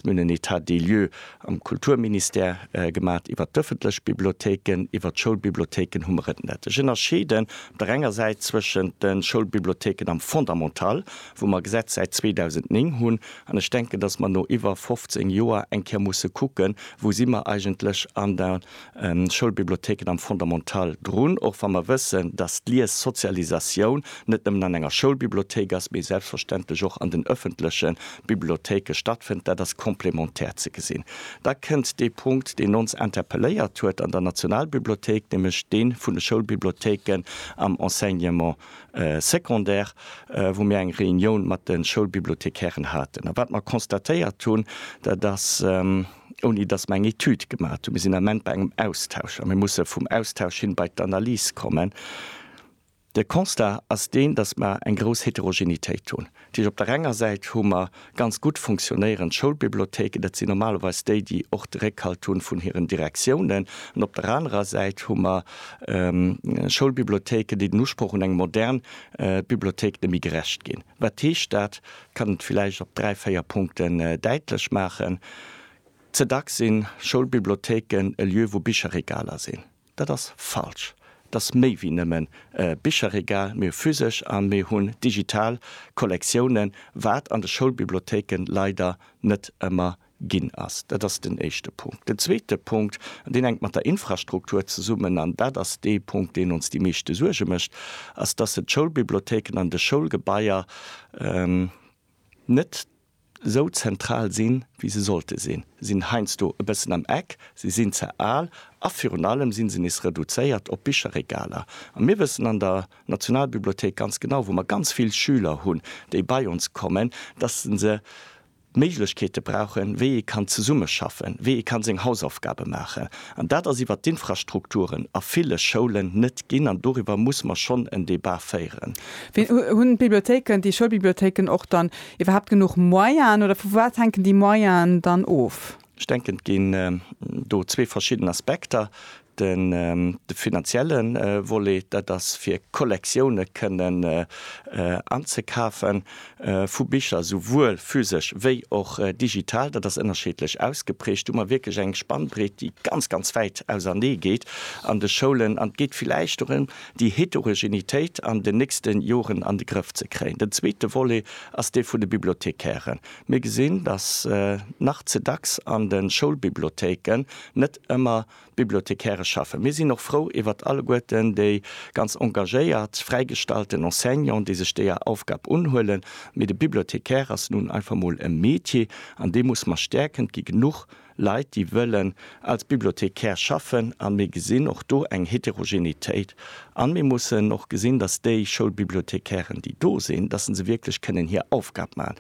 Mir hunn en Etat des lieux am Kulturministère gemaat iwwert d'öffentlech Bibliothéiken. Iwwert d'Schoulbibliothéiken hu mer et net. Ech ënnerscheeden op der enger Säit zwëschent de Schoulbibliothéiken am Fondamental, wou mer e Gesetz säit 2009 hunn, an ech denken, dass mer no iwwer 15 Joer eng Kéier musse kucken, wou si mer eigentlech an der Schoulbibliothéiken am Fondamental drun, och wa mer wëssen, dass d'Liessozialisatioun net nëmmen an enger Schoulbibliothéik ass, mee selbstverständlech och an den ëffentleche Bibliothéike stattfënnt. Dat ass complémentaire ze gesinn. Da kënnt dee Punkt, deen ons interpelléiert huet an der Nationalbibliothéik, nämlech dee vun de Schoulbibliothéiken am Enseignement secondaire, wou mir eng Reunioun mat de Schoulbibliothekären haten a wat mer constatéiert hunn, dat ass, ouni datt mer eng Etüd gemaat hunn. Mir sinn am Ament bei engem Austausch a mir musse vum Austausch hin bei d'Analys kommen. De Constat ass deen, datt mer eng grouss Heterogenitéit hunn. Dat heescht, op der enger Säit hu mer ganz gutt funktionéierend Schoulbibliothéiken, dat sinn normalerweis déi, déi och de Réckhalt hu vun hiren Direktiounen, an op der anerer Säit hu mer Schoulbibliothéiken, déi den Usproch un eng modern Bibliothéik net méi gerecht ginn. Wat heescht dat? kann et villäicht op dräi, véier Punkten däitlech maachen. Ze dacks si Schoulbibliothéiken e Lieu wou Bicherregaler sinn. Dat ass falsch. Et ass méi wéi nëmmen e Bicherregal. Mir hu physesch a mir hunn digital Kollektiounen, wat an de Schoulbibliothéiken leider net ëmmer ginn ass. Dat ass den éischte Punkt. Den zweete Punkt, an deen hänkt mat der Infrastruktur zesummen, an dat ass dee Punkt, deen ons déi meeschte Suerge mécht, ass, dass se d'Schoulbibliothéiken an de Schoulgebaier net esou zentral sinn, wéi se sollte sinn. Se sinn heiansdo e bëssen am Eck, se sinn ze al a virun allem si se nees reduzéiert op Bicherregaler. A mir wëssen an der Nationalbibliothéik ganz genau, wou mer ganz vill Schüler hunn, déi bei ons kommen, dass se se, d'Méiglechkeete brauchen, wéi ee kann zesummeschaffen, wéi ee kann seng Hausaufgabe maachen. An dat ass iwwert d'Infrastrukturen a ville Schoulen net ginn. An doriwwer muss mer schonn en Debat féieren. Hunn d'Bibliothéiken, déi Schoulbibliothéiken och dann iwwerhaapt genuch Moyenen oder vu wat hänken déi Moyenen dann of? Ech denken, et ginn do zwee verschidden Aspekter. De finanzielle Volet, dat ass fir Kollektioune kënnen anzekafe vu Bicher, souwuel physesch wéi och digital. Dat ass ënnerscheedlech ausgeprägt. Do hu mer wierklech eng Spannbreet, déi ganz, ganz wäit ausernee geet an de Schoulen. An et geet villäicht dorëm, déi Heterogenitéit an den nächste Joren an de Grëff ze kréien. Den zweete Volet ass dee vun de Bibliothekairen. Mir gesinn, datt nach ze dacks an de Schoulbibliothéiken net ëmmer d'Bibliothecairë schaffen. Mir sinn och frou iwwert alleguerten déi ganz engagéiert fräigestallten Enseignanten, déi sech deeër Aufgab unhuelen, mee de Bibliothecaire ass nun einfach mol e Métier an dee muss mer stäerken, et gi genuch Leit, déi wëllen als Bibliothecaire schaffen, a mir gesinn och do eng Heterogenitéit. A mir mussen och gesinn, datt déi Schoulbibliothecairen, déi do sinn, datt se se wierklech kënnen hir Aufgab maachen.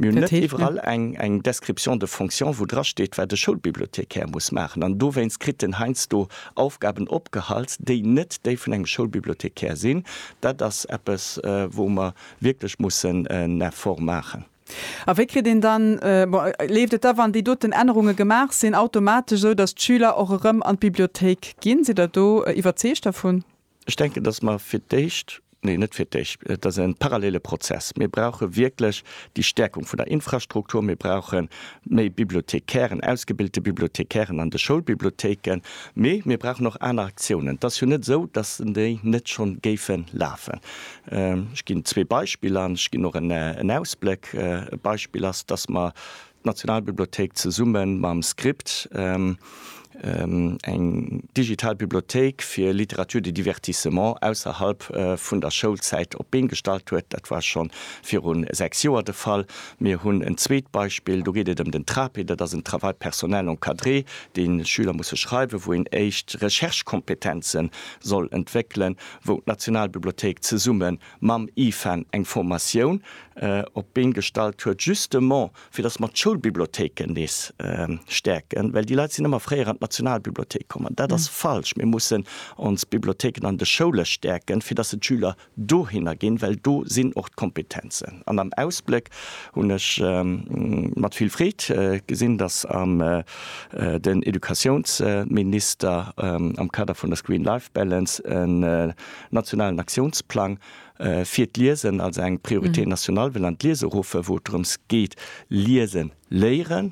Mir hunn net iwwerall eng Description de fonction, wou drasteet, wat e Schoulbibliothecaire muss maachen. An dowéinst kritt en heiansdo Aufgaben opgehalst, déi net déi vun engem Schoulbibliothecaire sinn. Dat ass eppes, wou mer wierklech mussen en Effort maachen. A wéi kritt een dann, bon, leeft et da, wann déi doten Ännerunge gemaach sinn, automatesch esou, datt d'Schüler och erëm an d'Bibliothéik ginn? Sidd Der do iwwerzeegt dervun? Ech denken, datt mer fir d'éischt, nee, net fir d'éischt, et ass e parallele Prozess. Mir brauche wierklech déi Stärkung vun der Infrastruktur. Mir brauche méi Bibliothekären, ausgebilte Bibliothekären an de Schoulbibliothéiken. Mee mir brauchen och aner Aktiounen. Et ass jo net esou, datt déi net schonn géife lafen. Ech ginn zwee Beispiller an ech ginn och en Ausbléck. E Beispill ass, dass mer d'Nationalbibliothéik zesumme mam Script eng digital Bibliothéik fir Littérature de divertissement ausserhalb vun der Schoulzäit op d'Been gestallt huet. Dat war scho viru sechs Joer de Fall. Mir hunn en zweet Beispill, do geet et ëm den TRAPE, dat ass en Travail personnel encadré, dee Schüler musse schreiwen, wou een éischt Recherchekompetenze soll entwéckelen. wou d'Nationalbibliothéik zesumme mam IFAN eng Formatioun op d'Been gestallt huet, justement fir datt mer d'Schoulbibliothéiken nees stäerken, well déi Leit sinn ëmmer fréier an d'Nationalbibliothéik komm an dat ass falsch. Mir mussen ons Bibliothéiken an de Schoule stäerken, fir datt se d'Schüler dohinner ginn, well do sinn och d'Kompetenzen. An am Ausbléck hunn ech mat vill Freed gesinn, datt am. den Educatiounsminister am Kader vun der Screen Life Balance en nationalen Aktiounsplang fir d'Liesen als eng Priorité nationale wëll an d'Liese ruffe, wou et drëms geet, Liese léieren.